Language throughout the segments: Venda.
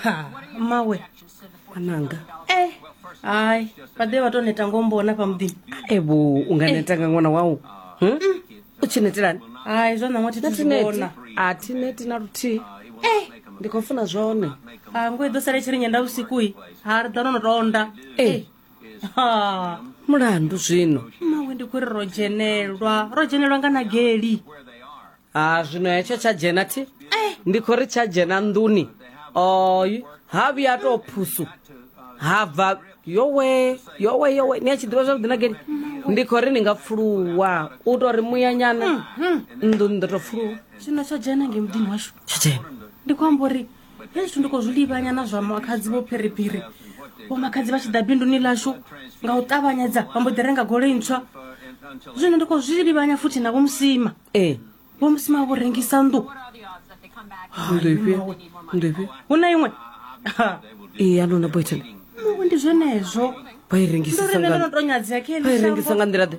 ha mawe ananga eh hayi vhaḓe vha tou neta ngombona fha muḓini evo u nga neta nga ṅwana wau Hm? u tshi netelani hayi zwa ṋaṅwa thi thi zwi natineti vhona a thi neti na luthihi eh ndi khou funa zwone ha ngo i ḓo sala i tshi ri nyenda vhusiku-i ha ri ḓa no no tonda e ha mulandu zwino mawe ndi kuri ro dzhenelwa ro dzhenelwa nga na geli ha zwino hetsho tsha dzhena thi ndi khou ri tsha dzhena nḓuni oy ha vhuya tou phusu ha bva yowe yowe yowe ni a tshi ḓivha zwavhuḓi na geli ndi khou ri ni nga pfuluwa u tou ri muyanyana nḓuni ndo tou pfuluwa zwino tsho dzhena nge muḓini washu tsha dzhena ndi khou amba uri hezwi ndi khou zwi livhanya na zwa makhadzi vho phiriphiri vho makhadzi vha tshi ḓa binduni ḽashu nga u ṱavhanyedza vha mbo ḓi renga goloi ntswa zwino ndi khou zwi livhanya futhi na vhomusima ee eh. vhomusima vho rengisa nnḓu hu na iṅwe ee a lona boyton mawe ndi zwenezwo vha i rengisa nga nḓila ḓe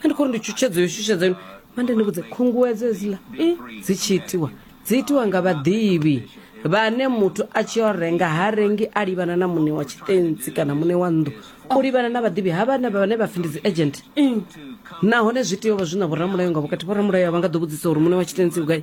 a ndi khou ri ndi tshutshedzo yo shushedza yone mande ni vhudze khunguwedzo hedziḽa i dzi tshi itiwa dzi itiwa nga vhaḓivhi vhane muthu a tshi yo renga ha rengi a livhana na muṋe wa tshitentsi kana muṋe wa nnḓu u livhana na vhaḓivhi ha vhane vhane vha pfi ndi dzi agent nahone zwi tea u vha zwi na vhoramulayo nga vhukati vhoramulayo a vha nga ḓo vhudzisa uri muṋe wa tshitentsi u gai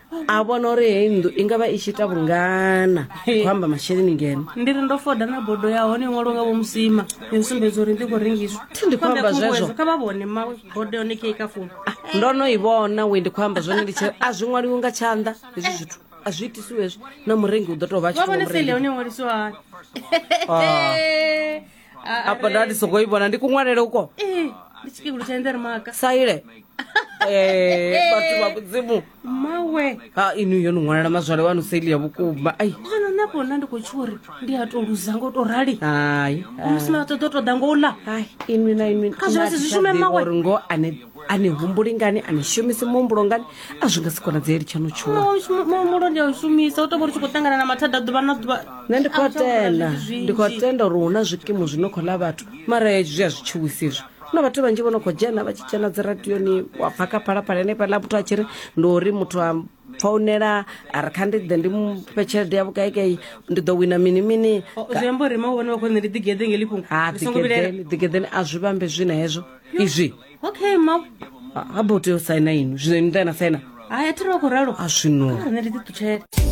a vhona uri heyi nnḓu i nga vha i tshi ita vhungana khou amba masheleni ngeno ndi ri ndo foda na bodo ya hone iṅwalo nga vho musima ni u sumbedza uri ndi khou rengiswa thi ndi khou amba zwezwo kha vha vhone mawe bodo yone kei ka fumi ah, ndo no i vhona we ndi khou amba zwone ndi tshi a zwi ṅwaliwi nga tshanḓa hezwi zwithu a zwi itisiwezwo na murengi u ḓo tou vha tshivhone sele hone ṅwalisiwa hani ah. apa ndati sokoibona ndikuṅwalele uko Eh, ndi chikikulu cha ndere maka saile Eh, bathu ba mudzimu mawe ha inu yo niṅwalela mazwale wanu saili ya vhukuma ai kana napo na ndi khou tsho uri ndi a to luza ngo to rali hai musi na ṱoḓo ṱoḓa ngo u ḽa hai inwi na inwi Kha zwi vha zwi shume mawe. uri ngo ane a ni humbuli ngani a ni shumisi muhumbulo ngani a zwi nga si konadzeli tshanou tshuwa muhumbulo ndi a u shumisa u tou vha ri tshi khou ṱangana na mathada ḓuvha na ḓuvha nṋe ndi khou tenda ndi khou tenda uri hu na zwikimu zwi no khou ḽa vhathu mara zwi a zwi tshiwisi izwi na vhathu vhanzhi vho no khou dzhena vha tshi dzhena dzi radioni wa pfa kha phalaphala henefhaḽa muthu a tshi ri ndi uri muthu a founela a ri kha ndi ḓe ndi mufhe tshelede ya vhukaikai ndi ḓo wina mini mini zwiamba uri ma vhone vha khou nṋe ndi ḓigeḓe ngeli fhungo ha ḓigeḓeni ḓigeḓeni a zwi vhambe zwi na hezwo izwi okay ma ha bo tea u saina inwi zwino ni ḓa na saina hai a thi ri vha khou ralo a zwino nṋe ndi ḓi ṱutshela